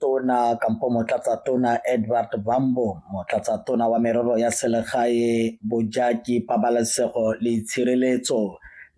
Tona kampo Motlatsa Tona Edward Bambo, Motlatsa Tona wa Merero ya Selegae, Bojaki, Pabalesego le Itshireletso,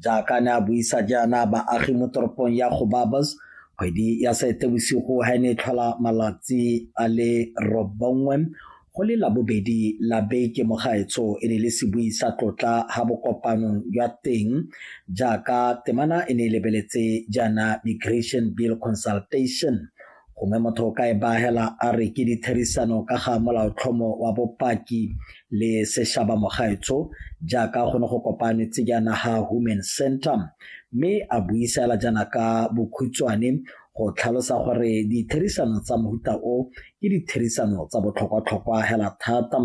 jaaka ne a buisa jaana baagi mo toropong ya Gobabos kgwedi ya Seetebosigo ha e ne e tlhola malatsi a le robongwe Go le Labobedi la beke mo gaetsho e ne e le sebui sa tlotla ha bokopanong jwa teng jaaka temana e ne e lebeletse jaana Migration Bill Consultation gongwe motho o ka e baagela a re ke ditherisano ka ga molaotlhomo wa bopaki le seshaba mogaetsho jaaka go ne go kopanetse jaana ha Human Center mme a buisa fela jaana ka bokhutshwane go tlhalosa gore ditherisano tsa mohuta o ke ditherisano tsa botlhokwatlhokwa hela thata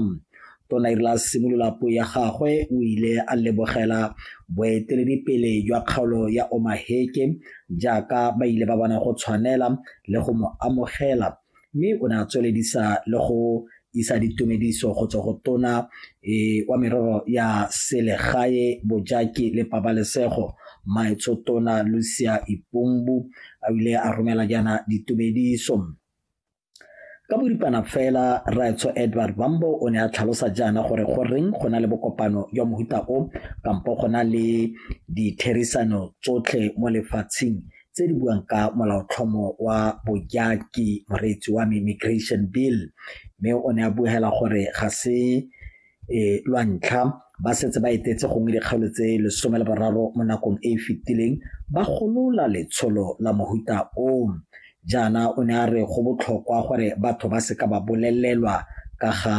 tona irela simolola puo ya gagwe o ile a lebogela boeteledipele jwa kgaolo ya omaheke jaaka ba ile ba bona go tshwanela le go mo amogela mme o ne a tsweledisa le go isa ditumediso go tswa go tona e, wa merero ya selegae bojaki le pabalesego maetsho tona lucia ipumbu a ile a romela jaana ditumediso ka boripana fela raetsho edward bambo o ne a tlhalosa jaana gore go reng go na le bokopano jwa mohuta o kampo go na le ditherisano tsotlhe mo lefatsheng tse di buang ka molaotlhomo wa bojaki moreetsi wa me immigration bill mme o ne a buhela gore ga se e lwa ntlha ba setse ba etetse gongwe dikgaolo tse lesome le boraro mo nakong e e fetileng ba golola letsholo la mohuta o jaana o ne a re go botlhokwa gore batho ba seka ba bolelelwa ka ga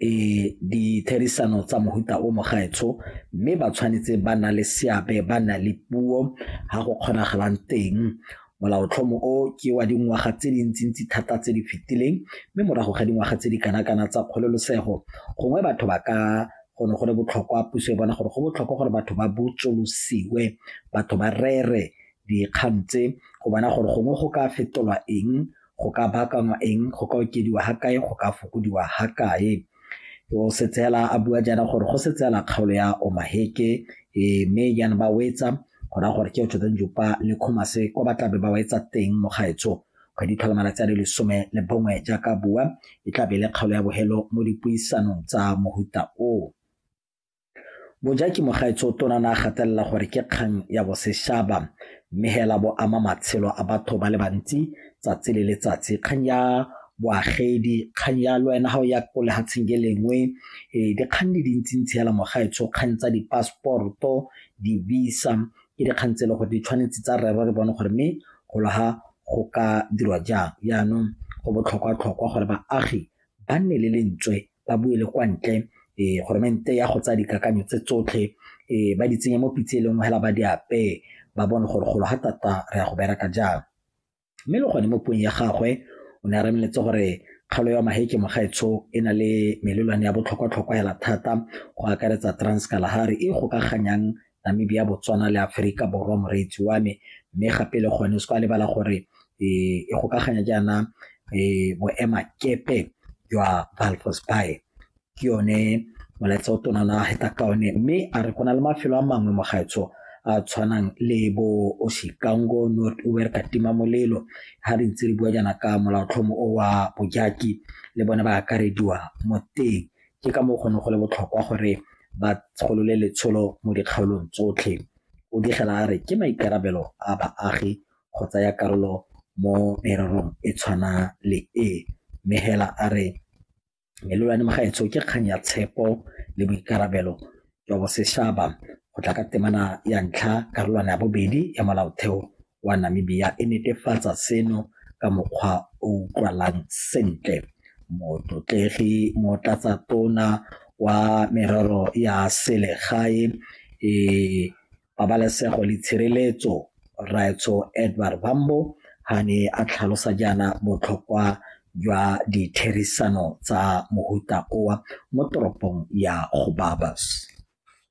e ditherisano tsa mohuta o mogaetsho mme ba tshwanetse ba na le seabe ba na le puo ga go kgonagalang teng molaotlhomo o ke wa dingwaga tse dintsintsi thata tse di fetileng mme morago ga dingwaga tse di kanakana tsa kgololosego gongwe batho ba ka go ne go le botlhokwa puso e bona gore go botlhokwa gore batho ba botsolosiwe batho ba rere dikgang tse go bona gore gongwe go ka fetolwa eng go ka baakangwa eng go ka okediwa ga kae go ka fokodiwa ga kae o setsela a bua jaana gore go setsela kgaolo ya omaheke e, mme yana ba wetsa go raya gore ke otshotseng jopa le khomase kwa ba tlabe ba wetsa teng mo gaetsho kgwedi tlhola malatsi a le lesome le bongwe jaaka bua e tlabe le kgaolo ya bogelo mo dipuisanong tsa mohuta o Bojaki Mogaetsotona ne a gatelela gore ke kgang ya boseshaba mme hela bo ama matshelo a batho ba le bantsi tsatsi le letsatsi kgang ya boagedi kgang ya le wena ga o ya ko lehatsheng ke lengwe ee dikgang di dintsintsi hela mogaetsho kgang tsa di-passport-o di-visa ke dikgang tse e le gore di tshwanetse tsa rero re bone gore mme golo ga go ka dirwa jang jaanong go botlhokwa-tlhokwa gore baagi ba nne le lentswe ba bue le kwa ntle um goromente ya go tsaya dikakanyo tse tsotlhe um ba di tsenye mo pitse e lengwe fela ba di apeye ba bone gore golo ga tata re ya go bereka jang mme le gone mo puong ya gagwe o ne a remeletse gore kgalo ya maheke mogaetsho e na le melelwane ya botlhokwatlhokwa hela thata go akaretsa transkalahari e gokaganyang Namibia, Botswana le Aferika Borwa moreetsi wa me mme gape le gone se kwa lebala gore e e gokaganya jaana e boema kepe jwa Valfos Bay ke yone molaetsa o tona na heta ka one mme a re go na le mafelo a mangwe mo gaetsho a tshwanang le bo Oshikango North Uwer Katima Molelo ha re ntse re bua jaana ka molaotlhomo o wa Bojaki le bone ba akarediwa mo teng Ke ka moo go neng go le botlhokwa gore ba tsholole letsholo mo dikgaolong tsotlhe. O digela a re ke maikarabelo a baagi go tsaya karolo mo mererong e tshwana le e mme hela a re melelwane magaetsho ke kgang ya tshepo le boikarabelo jwa Boseshaba go tla ka temana ya ntlha karolwana ya bobedi ya molaotheo wa Namibia e netefatsa seno ka mokgwa o utlwalang sentle. Motlotlegi motlatsa tona wa merero ya selegae e Pabalesego le Tshireletso, Rraetsho Edward Bambo, ha ne a tlhalosa jaana botlhokwa jwa ditherisano tsa mohuta owa mo toropong ya Gobabis.